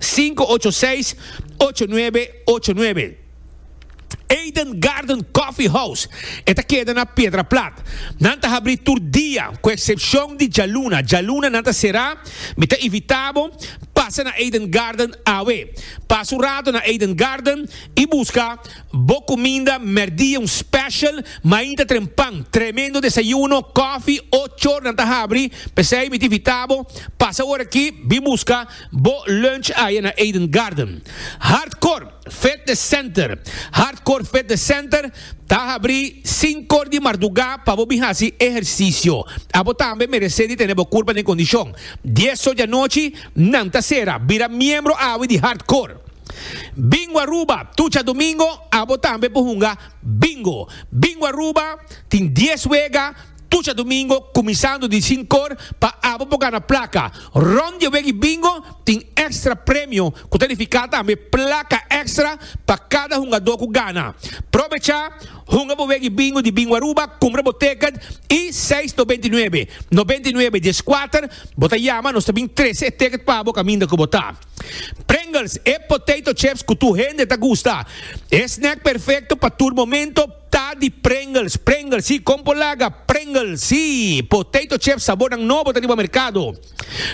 Sinku ocho seis, ocho nuebe, ocho nuebe. Eden Garden Coffee House e ta keda na Piedra Plat. Nan ta habrí tur dia ku eksepshon di djaluna. Djaluna nan ta será. Mi ta invitá bo pasa na Eden Garden awe. Pasa un rato na Eden Garden i buska bo kuminda mèrdia, un special mainta tren pan. Tremendo desayuno, kòfi, ocho or nan ta habrí. P'esei mi ta invitá bo pasa ora aki, bin buska. Bo lunch aye na Eden Garden. Hardcore Fitness Center Hardcore Fitness Center ta habri sinkor di mardugá pa bo bin hasi ehersisio. Abo tambe meresé di tene bo kurpa den kondishon. Dieso di anochi nan ta sera. Bira miembro awe di Hardcore. Bingo Aruba Tucha domingo abo tambe por hunga Bingo. Bingo Aruba tin dies wega. Tucha domingo kuminsando di sinkor pa abo por gana plaka. Rond di e weki bingo tin èkstra premio ku ta nifiká tambe plaka èkstra pa kada hungadó ku gana. Probechá, hunga bo weki bingo di Bingo Aruba, kumpra bo tèkèt i seis to binti nuebe, nobenta i nuebe dies kuater, bo ta yama nos ta bin trese e tèkèt pa bo kaminda ku bo ta. Pringles, e potato chips ku tur hende ta gusta. E snèk perfekto pa tur momento. Ta di Pringles, Pringles si, kon por laga Pringles si. Potato chips sabornan nobo ta riba merkado.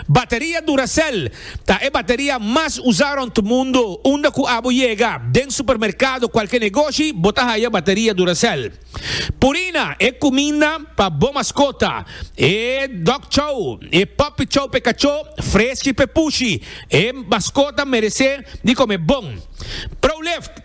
Bateria Duracell ta e bateria mas usa rònt mundo. Unda ku abo yega, den supermerkado, kualke negoshi, bo ta haya bateria Duracell. Purina, e kuminda pa bo maskota, e dog chow, e puppy chow p'e kachó, freski p'e pushi. E maskota meresé di kome bon. Prolift.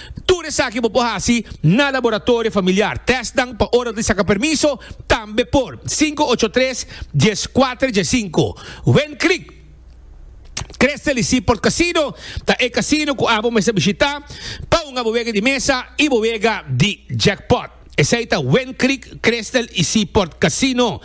Tur esaki bo por hasi na laboratorio familiar. Tèstnan pa ora di saka permiso tambe por, sinku ocho tres, dies kuater, dies sinku. Win Creek Crystal y Seaport Casino ta e casino cu abo mester bishita pa un abo wega di mesa y bo wega di jackpot. Esei ta Wind Creek, Crystal y Seaport Casino.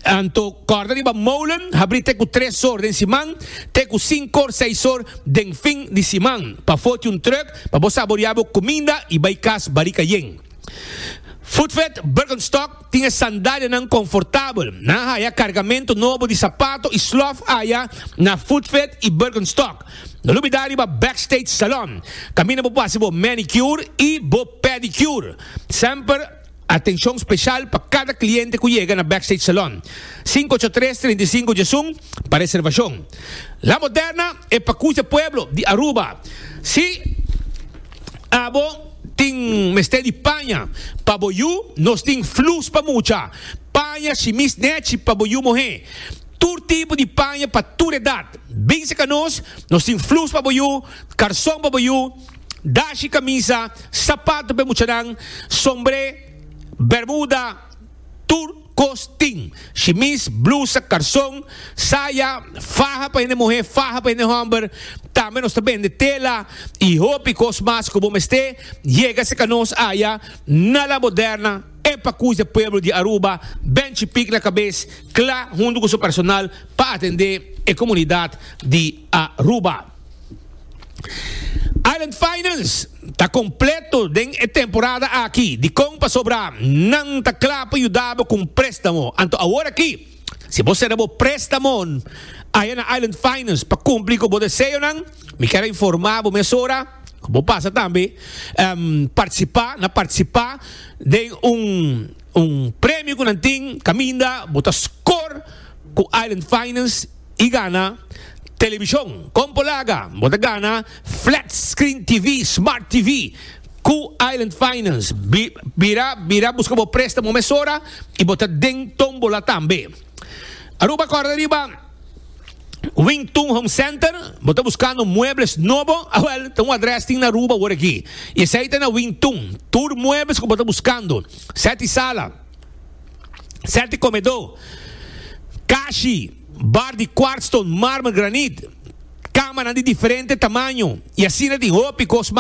Anto kòrda riba molen habrí te ku tres or den siman te ku sinkor, seis or den fin di siman pa foti un trùk pa bo saboriá bo kuminda y bai kas barika yen. Foodfed Birkenstock tin e sandalianan konfortabel. Nan haya kargamentu nobo di sapato y slòf aya na Foodfed y Birkenstock. No lubida riba Backstage Salon, kaminda bo por hasi bo manicure i bo pedicure. Semper atenshon speshal pa kada kliente ku yega na Backstage Salon. Sinku ocho tres, treinta i sinku djesun pa reservashon. La Moderna e pakucha pueblo di Aruba. Si abo tin mester di paña pa bo yu, nos tin flus pa mucha. Paña shimis nechi pa bo yu mohé. Tur tipo di paña pa tur edat. Binse ka nos, nos tin flus pa bo yu, karson pa bo yu, dashi, kamisa, sapato p'e muchanan, sombré, bermuda, tur kos tin, shimis, blusa, karson, saya, faha pa hende muhé, faha pa hende hòmber, tambe nos ta bende tela i hopi kos mas ku bo mest'é, yega se ka nos aya na La Moderna. E pakus dje pueblo di Aruba ben chipik na kabes kla huntu ku su personal pa atendé e komunidat di Aruba. Island Finance ta kompleto den e temporada aki. Dikon pasobra nan ta kla pa yuda bo ku un préstamo, anto awor aki. Si bo sera bo prestamon aya na Island Finance pa cumpli cu bo deseonan, mi kier a informa bo mesora cu bo pasa tambe um, participa na participa den un un premio cu nan tin caminda bo ta score cu Island Finance y gana television con polaga, bo ta gana flat screen TV, smart TV. Ku Island Finance, bira bira buska bo préstamo mesora i bo ta den tómbola tambe. Aruba kòrda riba Wing Tun Home Center, bo ta buskando muebles nobo? Awèl, ta un adrès tin na Aruba wor aki i esei ta na Wing Tun. Tur muebles ku bo ta buskando, sèti sala, sèti komedó, kashi, bar di kwartston, mármel, granit, kámarnan di diferente tamaño i asina tin hopi kos mas.